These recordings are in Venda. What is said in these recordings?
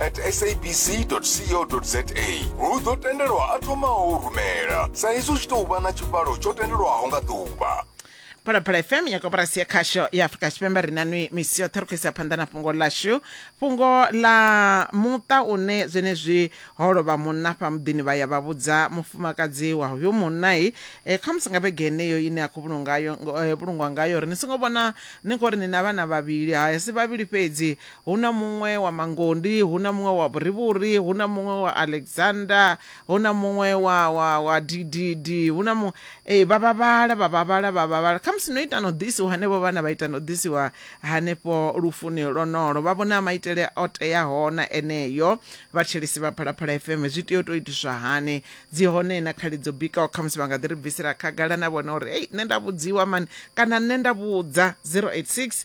at sabc.co.za hu ḓo tendelwa a thomaho u rumela sa izwi u tshi tou vha na tshivhalo tsho tendelwaho nga ḓuvha phalaphala fm ya koporasi ya khasho ya afurika tshipembe ri nanwi misi yoṱhe ri khou isa phanḓa na fhungo ḽashu fhungo ḽa muṱa une zwenezwi ho lovha munna fha muḓini vha ya vha vhudza mufumakadzi wa hoyo munnai e, khamusi nga vhege heneyo ine a khou vhulungayo eh, vhulungwa ngayo ri ni songo vhona ni khou ri ni na vhana vhavhili ha si vhavhili fhedzi Hu na muṅwe wa Mangondi, hu na muṅwe wa Vhurivhuri, hu na muṅwe wa Alexander, hu na muṅwe wa, wa, wa Dididi, hu na muṅwe. Ee, vha vha vhala, vha vha vhala, vha vha vhala. Khamusi no ita na u ḓisiwa hanevho vhana, vha ita na u ḓisiwa hanefho lufuni lwonolo. Vha vhona maitele o teaho na eneo. Vhathetshelesi vha Phalaphala FM, zwi tea u tou itiswa hani? Dzi hone na khali dzo bikaho, khamusi vha nga ḓi ri bvisela khagala na vhone uri, Hei, nṋe nda vhudziwa mani, kana nṋe nda vhudza. 086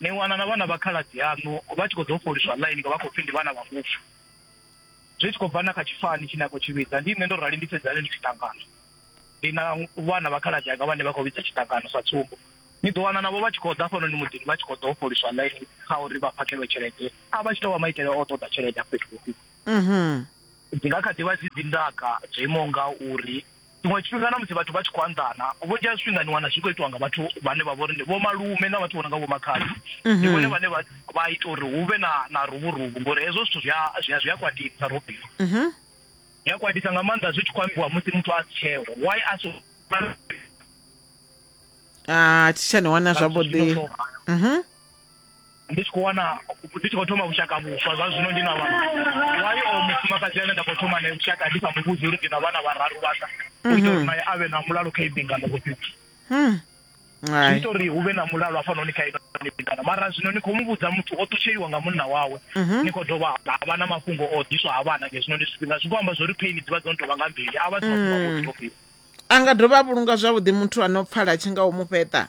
Ni wana na vhana vha khaladzi aṋu vha tshi khou ḓou fholiswa ḽaini nga vha khou pfi ndi vhana vha mufu, zwi tshi khou bva na kha tshifani tshine a khou tshi vhidza. Ndi nṋe ndo rali, ndi Sedzani ndi tshiṱangano. Ndi na vhana vha khaladzi anga vhane vha khou vhidza tshiṱangano sa tsumbo. Ni ḓo wana navho vha tshi khou ḓa hafhanoni muḓini vha tshi khou ḓou fholiswa ḽaini kha uri vha phakhelwe tshelede, a vha tshi tou vha maitele a u ṱoḓa tshelede afho fhethu vhukuma. Dzi nga kha ḓi vha dzi dzi ndaka dzo imaho nga uri. Tshiṅwe tshifhinga na musi vhathu vha tshi khou anḓana, vhunzhi ha zwifhinga ni wana zwi khou itiwa nga vhathu vhane vha vha uri ndi vhomalume na vhathu vho no nga vhomakhadzi. Mhm. Ndi vhone vhane vha ita uri hu vhe na na ruvhuruvu ngori hezwo zwithu zwi a zwi a zwi a kwatisa Robino. Mhm. Zwi a kwatisa nga maanḓa zwi tshi khou ambiwa musi muthu a si tsheho. Why a so Ah, thi tsha ni wana zwavhuḓi. Mhm. ndi tshi khou wana ndi tshi khou thoma vhushaka vhuswa zwa zwino ndi na vhana wayo o mufumakadzi ane nda khou thoma nae vhushaka ndi sa mu vhudzi uri ndi na vhana vhararu vhanga u itela uri mhm. naye a vhe na mulalo kha ibingano vhofhiti hmm. zwi ita uri hu vhe na mulalo hafhanoni kha ibingano mara zwino ni khou mu vhudza muthu o ṱutsheliwa nga munna wawe mhm. ni khou dovha ha vha na mafhungo o ḓiswa ha vhana ngezwino ndi zwifhinga zwi khou amba zwa uri phaini dzi vha dzo no tou vha nga mbili a vha si mafhungo a hmm. a nga dovha a vhulunga zwavhuḓi muthu a no pfala tshi nga u mu fheṱa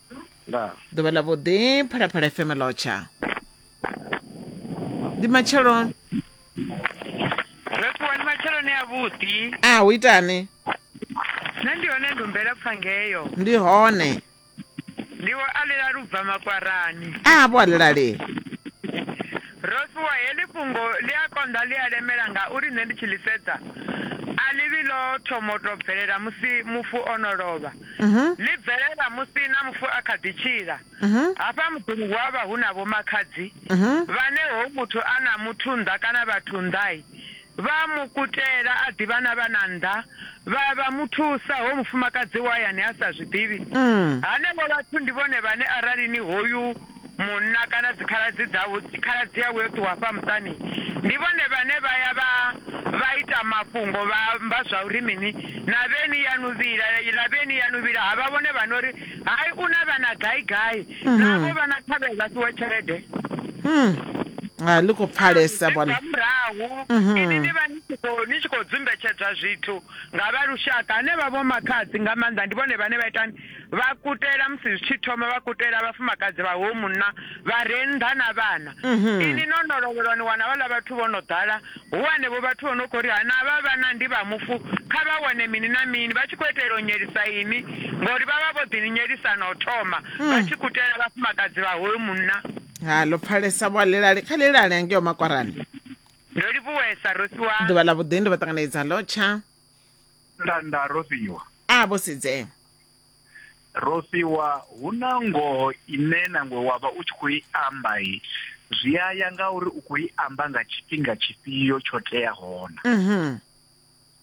ndaa ḓuvha ḽa vhuḓi phalaphala fm lotsha ndi matshelo ro ṱuwa ni matsheloni a vhuḓi a hu itani nṋe ndi hone ndumbela pfa ngeyo ndi hone ndiwo a ḽila lubva makwarani a vho alelali ro ṱuwa heḽi fhungo ḽi a konḓa ḽi a lemela ngauri nṋe ndi tshi ḽi sedza a ḽi vhi ḽo thomo tou bvelela musi mufu o no lovha ḽi bvelela musi na mufu a kha ḓi tshila. Hafha muḓini hu a vha hu na vhomakhadzi vhane hoyu muthu a na muthu nnḓa kana vhathu nnḓa-i, vha a mu kutela a ḓi vha na vhana nnḓa, vha vha mu thusa hoyu mufumakadzi wa hayani a sa zwi ḓivhi. Henevho vhathu ndi vhone vhane arali ni hoyu Munna kana dzikhaladzi dzawe, khaladzi yawe yo ṱuwa hafha muṱani, ndi vhone vhane vha ya vha vha ita mafhungo, vha amba zwa uri mini? Navheni yaṋu vhila, lavheni yaṋu vhila. Ha vha vhone vha no ri, Hai, u na vhana gai-gai, navho vha na thavhea vha fhiwe tshelede. Ha, ḽi khou pfalesa, Nga vhona. murahu, inwi ni vha ni tshi khou ni tshi khou dzumbetshedzwa zwithu nga vha lushaka, hanevha vhomakhadzi nga maanḓa ndi vhone vhane vha itani? vha kutela musi zwi tshi thoma vha kutela vhafumakadzi vha ho munna vha re nnḓa na vhana mhm. ini no no lovhelwa ni wana vhaḽa vhathu vho no ḓala hu hanevho vhathu vho no khou ri hana vha vhana ndi vha mufu kha vha wane mini na mini vha tshi khou itela u nyelisa ini ngori vha vha vho ḓi ni nyelisa na u thoma mm. vha tshi kutela vhafumakadzi vha hoyo munna ha ḽo pfalesa vho alelale kha lelale angeo makwarani ndo livhuwesa rosiwa ḓuvha ḽa vhuḓi ndi vha ṱanganedza lotsha nda nda ro fhiwa a vho sidzea ro fhiwa hu na ngoho ine nangwe wa vha u tshi khou i amba i zwi a ya nga uri u khou i amba nga tshifhinga tshifhio tsho tea hona mhm.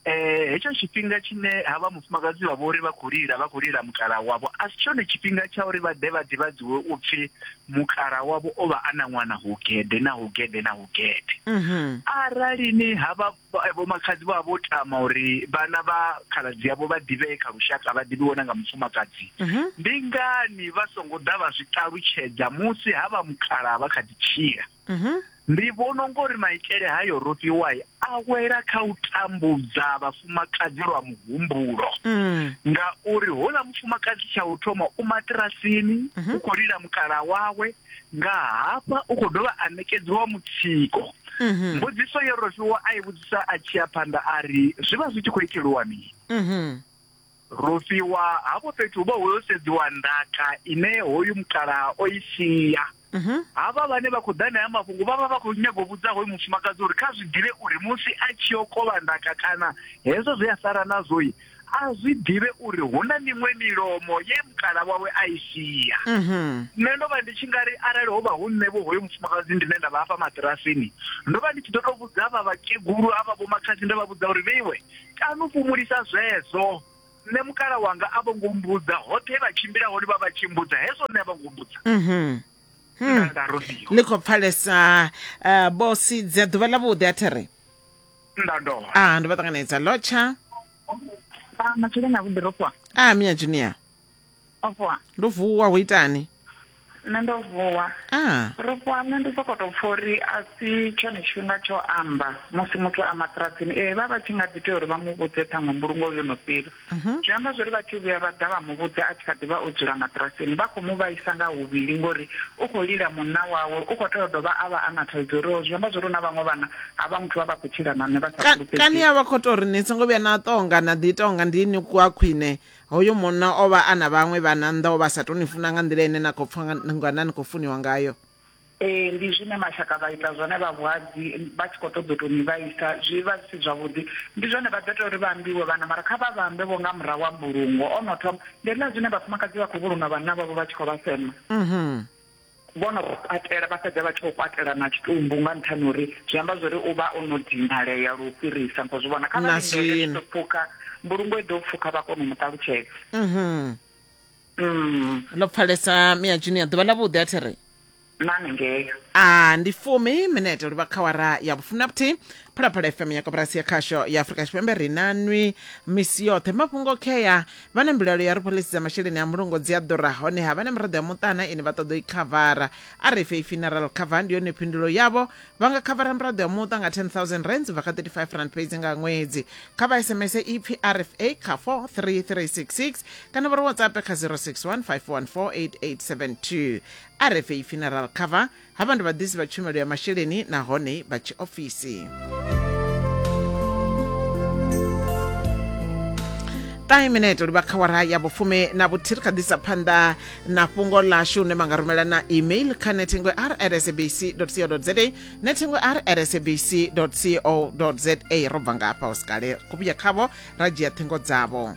eh hetsho tshifhinga tshine ha vha mufumakadzi vha vhori vha khou lila vha khou lila mukala wavho a si tshone tshifhinga tsha uri vha ḓe vha ḓivhadziwe u pfhi mukala wavho o vha a na ṅwana hugede na hugede na hugede mhm. arali ni ha vha Vhomakhadzi vha vho tama uri vhana vha khaladzi yavho vha ḓivhee kha lushaka vha ḓivhiwe na nga mufumakadzi. Ndi ngani vha songo ḓa vha zwi ṱalutshedza musi ha vha mukhalavha vha kha ḓi tshila? Ndi vhona unga uri maitele hayo Rofhiwa a wela kha u tambudza vhafumakadzi lwa muhumbulo ngauri houḽa mufumakadzi tsha u thoma u maṱirasini u kho lila mukalaha wawe nga hafha u khou dovha a ṋekedziwa mutsiko mhm. mbudziso yo rofhiwa a i vhudzisa a tshi ya phanḓa a ri zwi vha zwi tshi khou iteliwa mini mhm. rofhiwa hafho fhethu hu vha ho sedziwa ndaka ine hoyu mukalaha o i sia mhm. havha vhane vha khou ḓa naya mafhungo vha vha vha khou nyaga u vhudza hoyu mufumakadzi uri kha zwi ḓivhe uri musi a tshi yo kovha ndaka kana hezwo zwi a sala nazwoi a zwi ḓivhe uri hu na miṅwe milomo ye mukala wawe a i sia mhm. nṋe ndo vha ndi tshi nga ri arali ho vha hu nṋe vho hoyo mufumakadzi ndine nda vha hafha matirasini ndo vha ndi tshi ḓo tou vhudza vha vhakegulu a vha vhomakhadzi nda vha vhudza uri vheiwe kanu fhumulisa zwezwo nṋe mukala wanga a vho ngo mbudza hoṱhe vha tshimbila hone vha vha tshi mbudza hezwo nṋe a vho ngo mbudza mhm. hmm. nda rofhiwa ni khou pfalesa uh, eh, bosi dza ḓuvha ḽa vhuḓi a thiri nda dovha a ndo vha ṱanganedza lotsha ah, matshileni a vhuḓi ro fhiwa a mia junior o fhiwa ndo vuwa ho itani nṋe ndo vuwa a ro fhiwa nṋe ndi soko tou pfa uri a si tshone tshifhinga tsho amba musi muthu a maṱirasini ee vha vha tshi nga ḓi tea uri vha mu vhudze ṱhaṅwe mbulungo yo no fhira Mhm. Zwi amba zwori vha tshi vhuya vha ḓa vha mu vhudza a tshi kha ḓivha o dzula maṱirasini vha khou mu vhaisa nga huvhili ngori u khou lila munna wawe u khou tea u dovha a vha a na thaidzo uri o zwi amba zwori hu na vhaṅwe vhana ha vha muthu vha vha khou tshila na nṋe vha sa Ka- kani fhulufhedzei a vha khou tou ri ni songo vhuya na tonga na ḓi tonga ndi ni kwa khwine hoyo munna o vha a na vhaṅwe vhana nnḓa o vha a sa tou ni funa nga nḓila ine na khou pfha nga- ngana ni khou funiwa ngayo Ee, ndi zwine mashaka vha ita zwone vha vhuhadzi vha tshi khou ṱoḓa u tou ni vhaisa, zwi vha zwi si zwavhuḓi. Ndi zwone vha ḓo ita uri vha ambiwe vhana, mara kha vha vha ambe vho nga murahu ha mbulungo. O no thoma, ndi hezwiḽa zwine vhafumakadzi vha khou vhulunga vhanna vhavho vha tshi khou vha sema. Vho no vha kwatela, vha fhedza vha tshi khou kwatela na tshitumbu nga nṱhani ha uri zwi amba zwa uri u vha o no dinalea lu fhirisa. Ni khou zwi vhona? Kha vha lindele zwi tshi ḓo pfuka, mbulungo i ḓo pfuka vha kona u mu ṱalutshedza. Mm, ndo pfalesa mia junior ḓuvha ḽa vhuḓi a thi ri nani ngei. a ndi fumi minete uri vha khawara ya vhufuna vhuthihi phalaphala fm ya koporasi ya khasho ya afurika tshipembe ri na nwi misi yoṱhe mafhungo khea vha na mbilaelo ya ri pholisi dza masheleni a mulungo dzi a ḓura hone ha vha na miraḓo ya muṱana ine vha ṱoḓa u i khavara a ri fhe i funeral cover ndi yone phindulo yavho vha nga khavara miraḓo ya muṱa nga 10000 rands bva kha 35 rand fhedzi nga ṅwedzi kha vha sms ipfi rfa kha 43366 kana vha ri whatsapp kha 0615148872 rfa funeral cover ha vha ndi vhaḓisi vha tshumelo ya masheleni nahone vha tshiofisi time minete livha kha wara ya vhufumi na vhuthihi ri kha ḓisa phanḓa na fhungo ḽashu hune ma nga rumela na email kha nethengo r at sabc co za nethengo r at sabc co za ro bva ngafha usikale ku vhuya khavho ra dzhia ṱhingo dzavho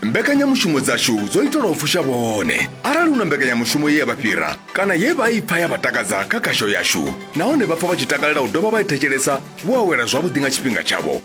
mbekanyamushumo dzashu dzo itelwa u fusha vhone arali hu na mbekanyamushumo ye ya vha fhira kana ye vha i pfa ya vha takadza kha khasho yashu nahone vha pfa vha tshi takalela u dovha vha i thetshelesa vho awela zwavhuḓi nga tshifhinga tshavho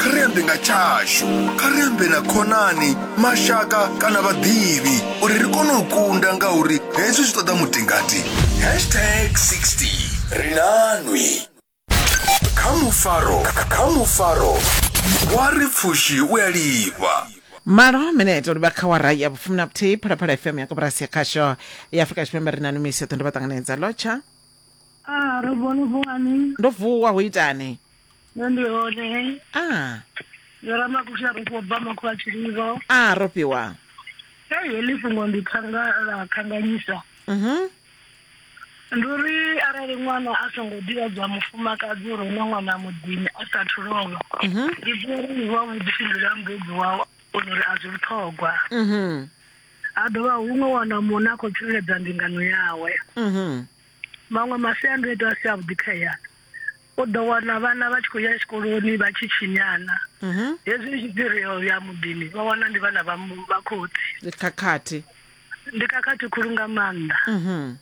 kha ri ambe nga tshashu kha ri ambe na khonani mashaka kana vhaḓivhi uri ri kone u kunda ngauri hezwi zwi ṱoḓa mutingati hashtag 60 ri nanwi kha mufaro kha mufaro wa ri pfushi u a lifha malo minete uri vha kha wara ya vhufumi na vhuthihi phalaphala fm ya koporasi ya khasho ya afurika tshipembe ri na numiso ṱondo vha ṱanganedza lotsha Ah, ro vhona vhuani. ndo vuwa ho itani nṋe ndi hone a yo ramakuxi a rofhiwa bva makho a tshililo a rofhiwa ei heḽi fhungo ndi khanga ḽa khanganyisa mhm ndi uri arali ṅwana a songo ḓivhadzwa mufumakadzi uri hu na ṅwana muḓini a sathu lovha mhm ndi ḓivha uri ndi wa vhuḓifhinduleli ha mubebi wawe kona uri a zwi vhuṱhogwa mhm ha dovha huṅwe wana muṋe a khou tsireledza mbingano yawe mhm maṅwe masiandoitwa a si avhuḓi kha ya u ḓo wana vhana vha tshi khou ya tshikoloni vha tshi tshinyana mhm. hezwi ndi tshipirio ya muḓini vha wana ndi vhana vha khotsi khakhathi ndi khakhathi khulu nga maanḓa mhm.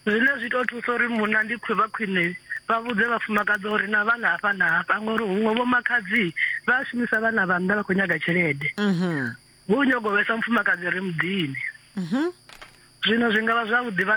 zwine zwi tou thusa uri muna ndi khwe vha khwine vha vhudze vhafumakadzi uri na vhana hafha na hafha ngori huṅwe vho makhadzi vha a shumisa vhana vha nnḓa vha khou nyaga tshelede mhm. hu u nyago vhesa mufumakadzi ri muḓini mhm. zwino zwi nga vha zwavhuḓi vha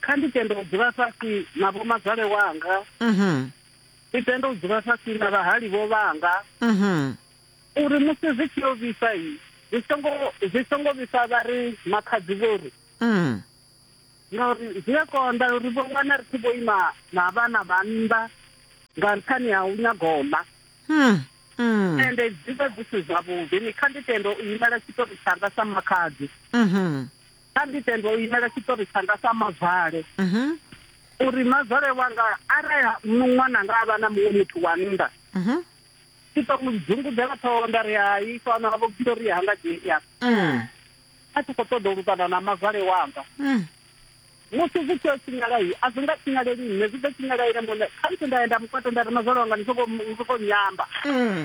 kha ndi tende u dzula fhasi na vhomazwale wanga mhm. ndi tende u dzula fhasi na vhahali vho vhanga mhm. uri musi zwi tshi yo vhisa yi zwi songo vhisa vha ri makhadzi vho ri mhm. ngauri zwi a konḓa uri vho wana ri tshi vho ima na vhana vha nnḓa nga nṱhani ha u nyaga u ḽa hmm, hmm. ende dzi vha dzi si zwavhuḓi ni kha ndi tende u imela tshitori tshanga sa makhadzi mhm. kha ndi tende u imela tshiṱori tshanga sa mavale mhm. uri mavale wanga arali ṅwananga a vha na muṅwe muthu wa nnḓa mhm. ndi ḓo mu dzungudela ṱhoho nda ri hai fana vho pfhi uri hanga dzhia mm. a tshi khou ṱoḓa u lukana na mavale wanga mm. musi zwi tshi o tshinyalai a zwi nga tshinyaleli nṋe zwi ḓo tshinyalaile mone khamusi nda ya nda mukwata nda ri mavale wanga ndi soko nyamba mm.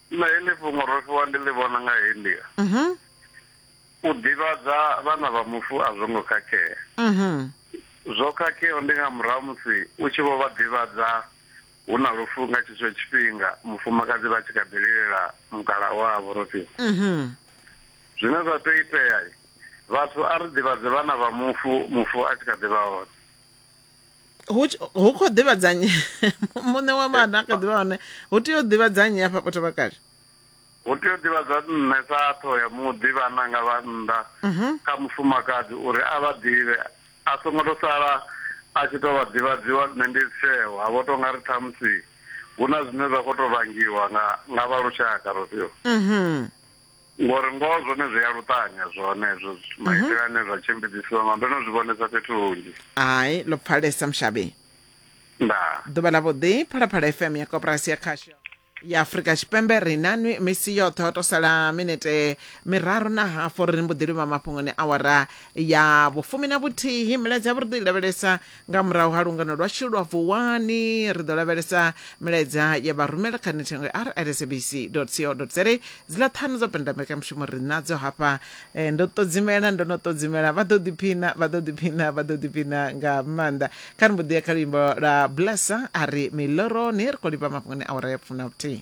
Nṋe heḽi fhungo ro fhiwa ndi ḽi vhona nga heyi nḓila, U ḓivhadza vhana vha mufu a zwo ngo khakhea. Zwo khakheaho ndi nga murahu ha musi u tshi vho vha ḓivhadza hu na lufu nga tshetsho tshifhinga mufumakadzi vha tshi kha ḓi lilela mukalaha wavho ro fhiwa. Zwine zwa tea u itea, Vhathu a ri ḓivhadze vhana vha mufu mufu a tshi kha ḓi vha hone. hu khou ḓivhadza nnyi muṋe wa maḓa a kha ḓivha hone hu tea u ḓivhadza nnyi hafha potho vhakale hu tea u ḓivhadza nṋe sa tho ya muḓi vhananga vha nnḓa mhm. kha mufumakadzi uri a vha ḓivhe a songo to sala a tshi to vha ḓivhadziwa nṋe ndi tsheo ha vho to nga ri ṱhamusi hu na zwine zwa khou to vhangiwa nga nga vha lushaka rofhiwa mhm. Ngori ngoho zwone zwi a luṱanya zwone hezwo zwithu maitele ane zwa tshimbidzisiwa nga ndo no zwi vhonesa fhethu hunzhi. Hai, ḽo pfalesa mushavhi. Ndaa. Ḓuvha ḽa vhuḓi, Phalaphala FM ya Koporasi ya Khasho ya Afrika Tshipembe ri na nwi misi yoṱhe ho to sala minete miraru na hafu ri mbo ḓi livha mafhungoni awara ya vhufumi na vhuthihi milaedza ya vhuḓi lavhelesa Nga murahu ha lungano lwashu lwa Vuwani, ri ḓo lavhelesa milaedza ya vharumela kha nethengwe ya rsabc.co.za. Dziḽa ṱhanu dza penda mbekanyamushumo ri nadzo hafha. Eh, ndo ṱodzimela, ndo no ṱodzimela, vha ḓo ḓiphina, vha ḓo ḓiphina, vha ḓo ḓiphina nga maanḓa. Kha ri mbo ḓi ya kha luimbo lwa Blesser a ri miloroni, ri khou livha mafhungoni awara ya fumi na vhuthihi.